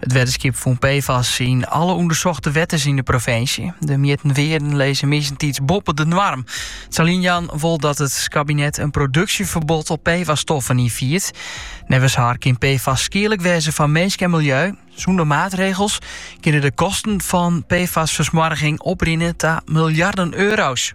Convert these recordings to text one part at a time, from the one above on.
It wetterskip fûn PFAS yn alle ûndersochte wetters yn de provinsje. De mjitten wearden lizze meastentiids boppe de noarm. Saliljan wol dat it kabinet in produksjeferbod op PFAS-stoffen ynfiert. Neffens har kin PFAS skierlik wêze foar minsk en miljeu. Sûnder maatregels kinne de kosten fan PFAS-fersmoarging oprinne ta miljarden euro's.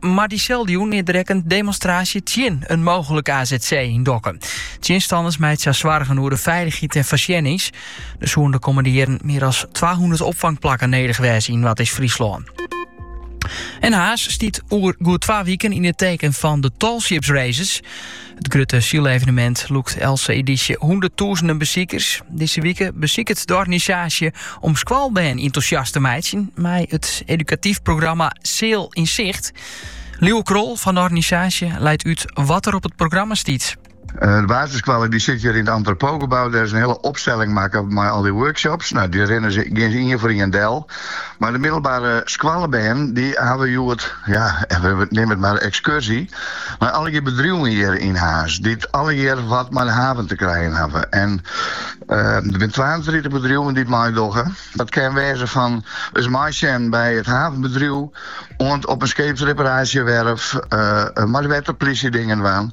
Mar dyselde jûn is der ek in demonstraasje tsjin in mooglike AZC yn Dokkum. Tsjinstanners meitsje har soargen oer de feilichheid en foarsjennings. Der soene de kommende jierren mear as 200 opfangplakken nedich wêze yn Noardeast-Fryslân. En Harns stiet oer goed twa wiken yn het teken van de Tallships Races. It grutte sylevenemint lûkt eltse edysje hûnderttûzenen besikers. Dizze wike besiket de organisaasje om skoalbern enthousiast te meitsjen mei it edukatyf programma Sail in Zicht. Lieuwe Krol fan de organisaasje leit út wat der op it programma stiet. Eh, de basisskoallen dy sitte hjir yn it Entrepotgebou. Dêr is in hiele opstelling makke mei al dy workshops. No, dy rinne se ien foar ien del. Mar de middelbare skoallebern dy hawwe hjoed, ja, neam it mar in ekskurzje nei allegear bedriuwen hjir yn Harns, dy't allegear wat mei de haven te krijen hawwe. En der binne twaentritich bedriuwen dy't meidogge. Dat kin wêze fan ris meisjen by it havenbedriuw oant op in skeepsreparaasjewerf, mei de wetterplysje dingen dwaan.